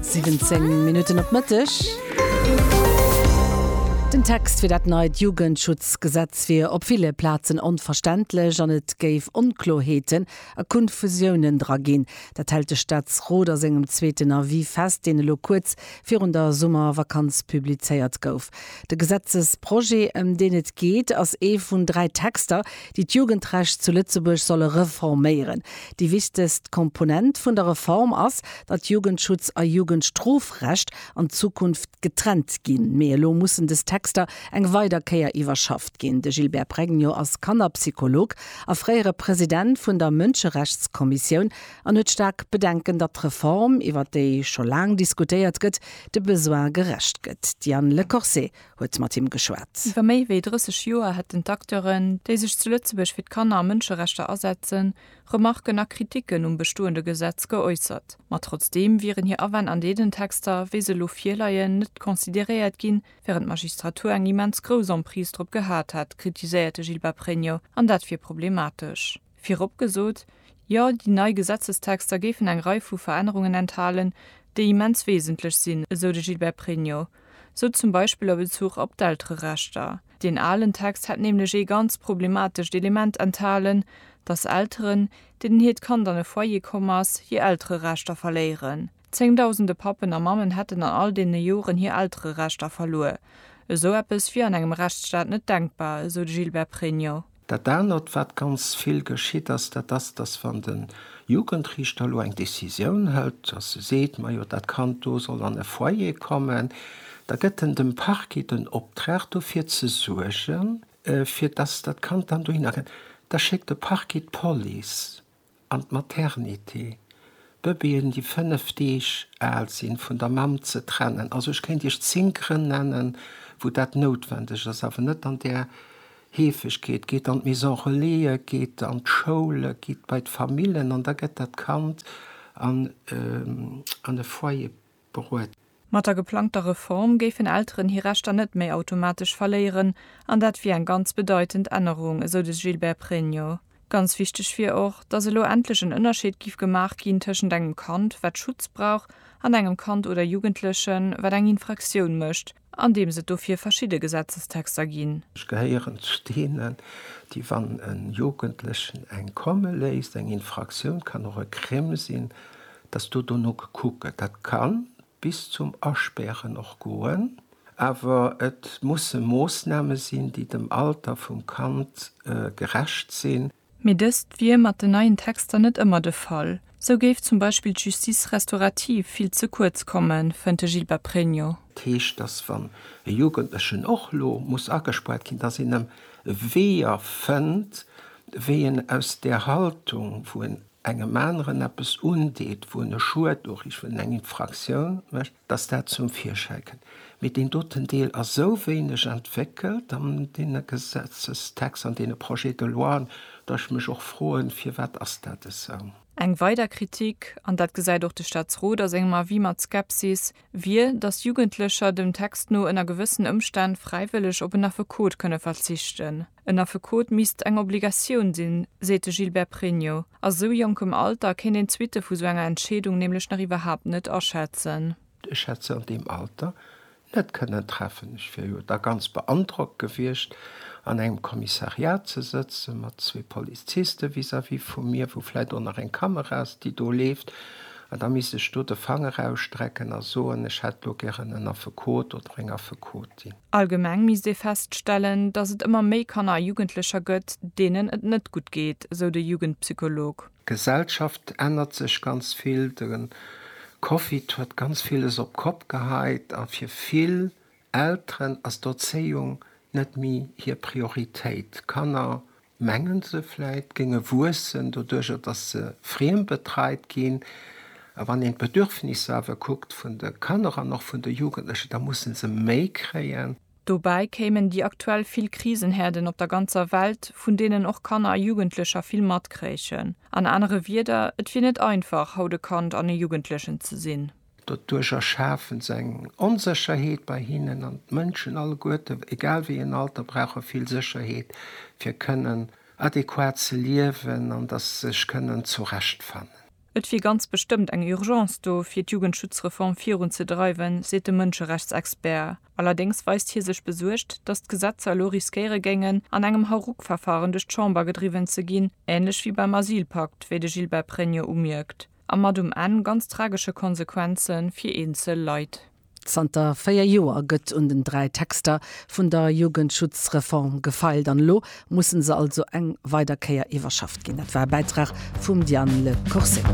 17 Minutten op Mëtteg. Den Text fir dat neit Jugendschutzgesetz wier op ville Plazen onverständlech an et géif Onkloerheeten a Kunfusiounen dra ginn. Dat hält de Staatsrot a sengem zweeten Avis fest, deen elo kuerz virun der Summervakanz publizéiert gouf. De Gesetzesprojet, ëm deen et geet, ass ee vun dräi Texter, déi d'Jugendrecht zu Lëtzebuerg solle reforméieren. Déi wichtegst Komponent vun der Reform ass, datt Jugendschutz a Jugendstrofrecht an Zukunft getrennt ginn. Mee elo mussen des Texter eng weider Kéier iwwerschafft ginn. De Gilbert Pregno ass Kannerpsycholog a fréiere President vun der Mënscherechtskommissioun an huet staark Bedenken, datt d'Reform, iwwert déi scho laang diskutéiert gëtt, de Besoin gerecht gëtt. D'Diane Lecorset huet mat him geschwat. Iwwer méi wéi 30 Joer hätten d'Acteuren, déi sech zu Lëtzebuerg fir d'Kanner a Mënscherechter asetzen, Remarken a Kriticken um bestoende Gesetz geäussert. Ma trotzdeem wieren hir Awänn an deenen Texter, wéi se elo virleien, net consideréiert ginn, wärend d'Magistratur eng immens grouss Emprise drop gehat hätt, kritiséiert de Gilbert Pregno, an dat wier problematesch. Virop gesot, Jo, déi nei Gesetzestexter géifen eng Rei vu Verännerungen enthalen, déi immens wesentlech sinn, esou de Gilbert Pregno. Sou zum Beispill a Bezuch op d'Eltererechter. Deen alen Text hätt nämlech ee ganz problematescht Element enthalen, datt Elteren, deenen hiert Kand an e Foyer komm ass, hir Eltererechter verléieren. Zéngdausende Pappen a Mammen hätten an all deene Joren hir Eltererechter verluer. Esou eppes wier an engem Rechtsstaat net denkbar, esou de Gilbert Pregno. Dat anert, wat ganz vill geschitt ass, dat ass, datt wann de Jugendriichter elo eng Decisioun hëlt, datt e seet, majo dat Kand do soll an e Foyer kommen, da gëtt en dem Parquet den Optrag dofir ze suergen, fir datt dat Kand dann dohinner kënnt. Da schéckt de Parquet d'Police. an d'Maternité, d'Bëbeeën déi 5 Deeg al sinn, vun der Mamm ze trennen. Also ech kéint Iech 10 Grënn nennen, wou dat noutwendeg ass, awer net an där Heefegkeet. Geet an d'Maison Relaisë, geet an d'Schoule, gitt bei d'Famillen an da gëtt dat Kand an e Foyer. beruet. Mat der geplangter Reform géifen Elteren hir Rechter net méi automatesch verléieren, an dat wier eng ganz bedeitend Ännerung, esou de Gilbert Pregno. Ganz wichteg wier och, datt elo endlech en Ënnerscheed giff gemaach ginn tëschent engem Kand, wat Schutz brauch, an engem Kand oder Jugendlechen, wat eng Infraktioun mécht. Andeems et dofir verschidde Gesetzestexter ginn. Ech gehéieren zu deenen, déi, wann e Jugendlechen eng komme léisst, eng Infraktioun kann och e Crime sinn, dass do dono gekuckt gëtt. Dat ka bis zum Aspären och goen. Awer et musse Moossname sinn, déi dem Alter vum Kand gerecht sinn. Mee dëst wier mat den neien Texter net ëmmer de Fall. Sou géif zum Beispill d'Justice restaurative vill ze kuerz kommen, fënnt de Gilbert Pregno. Dat heescht, datt wann e Jugendlechen och lo muss agespuert ginn, datt een em Weeër fënnt, wéi en aus där Haltung, wou en engem aneren eppes undeet, wou en e Schued uriicht, en eng Infraktioun mécht, datt dat zum Virschäi kënnt. Mee deen doten Deel ass esou wéineg entwéckelt an deene Gesetzestexter, an deene Projets de loien, datt ech mech och froen, Firwat ass dat esou? Eng weider Kritik, an dat gesäit och de Staatsrot a sengem Avis mat Skepsis, wier, datt Jugendlecher dem Text no ënner gewëssen Ëmstänn fräiwëlleg op en Affekot kënne verzichten. En Affekot misst eng Obligatioun sinn, seet de Gilbert Pregno. A sou jonkem Alter kéint een d'Suitte vu sou enger Entscheedung nämlech nach iwwerhaapt net aschätzen. Ech hätt se an deem Alter net kënnen treffen. Ech wier jo da ganz beandrockt gewiescht, an engem Kommissariat ze sëtzen, mat zwee Poliziste vis-à-vis vu mir, wou vläit och nach eng Kamera ass, déi do leeft, an da misst ech do de Fanger ausstrecken a soen, ech hätt elo gären en Affekot oder eng Affekotin. Allgemeng misst ee feststellen, datt et ëmmer méi Kanner a Jugendlecher gëtt, deenen et net gutt geet, sou de Jugendpsycholog. D'Gesellschaft ännert sech ganz vill. De Covid huet ganz villes op d'Kopp geheit a fir vill Elteren ass d'Erzéiung net méi hir Prioritéit. D'Kanner mengen se vläit, géinge wuessen, doduerjer datt se friembetreit ginn. A wann een d'Bedürfnisser awer kuckt vun de Kanner an och vun de Jugendlechen, da musse se méi kréien. Dobäi kéimen déi aktuell vill Krisenherden op der ganzer Welt, vun deenen och Kanner a Jugendlecher vill matkréichen. An anere Wieder, et wier net einfach, haut e Kand an e Jugendlechen ze sinn. Doduerch erschafen se eng Onsécherheet bei hinnen an d'Mënschen alleguerte, egal wéi en Alter, brauche vill Sécherheet, fir kënnen adequat ze liewen an datt se sech kënnen zurechtfannen. Et wier ganz bestëmmt eng Urgence do, fir d'Jugendschutzreform virun ze dreiwen, seet de Mënscherechtsexpert. Allerdéngs weist hie sech besuergt, datt d'Gesetzer elo riskéiere géingen, an engem Hauruck-Verfaren duerch d'Chamber gedriwwen ze ginn, änlech wéi beim Asylpakt, wéi de Gilbert Pregno umierkt. a mat um Enn ganz tragesche Konsequenze fir eenzel Leit. Zanter véier Joer gëtt un den dräi Texter vun der Jugendschutzreform gefeilt an elo musse se also eng weider Kéier iwwerschafft ginn. Dat war e Bäitrag vum Diane Le Corset.